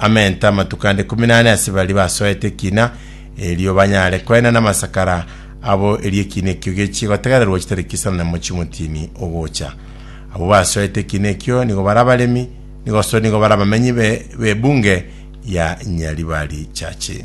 amente amatuko ande kumi nane ase baria basoete ekina erio banyare koena namasakara abo erio ekina ekio gechie gotegererwa chitariki sanemo chimotini ogocha abo basoete ekina ekio nigo bara abaremi nigo so nigo bara abamenyi be bebunge ya nyaribari chache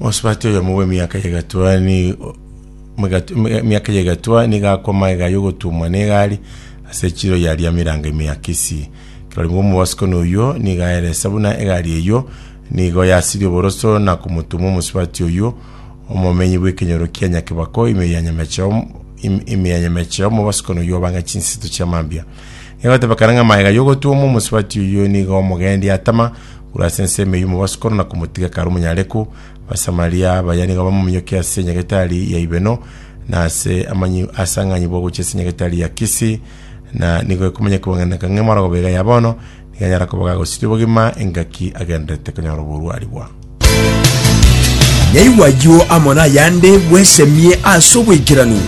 Mosubati oyomo bw'emiaka ya egatwa ni mwegat- mwe- emiaka ya egatwa nigo akoma ega y'ogotumwa na egari ase echiro ya Riamiranga ime ya Kisii. Kirori bwa omobasikoni oyio nigo aeresa buna egari eyio nigo yasirie oboroso na komotuma omosubati oyio omomenyi bw'ekenyoro kia Nyakibako ime ya Nyameche om- im- ime ya Nyameche omobasikoni oyio obang'a chinsinto chia mambia. egotebekana ng'a magega y'ogotuomwa omosubati oyio nigo omogendi atama korwa ase ensemo y'omobasukuru na komotiga kare omonyareku. Abasamaria baya nigo bamominyokia ase enyagetari ya Ibeno na ase amanyi ase ang'anyi bwa gochia ase enyagetari ya Kisi, na nigo ekomanya kobang'aineka ng'a emorogo bega ya bono nigo anyara koba gagosiria obogima engaki agendererete konyora oboruarigwa. Nyaigwa ayio amo nayande bwesemie ase obwaikeranu.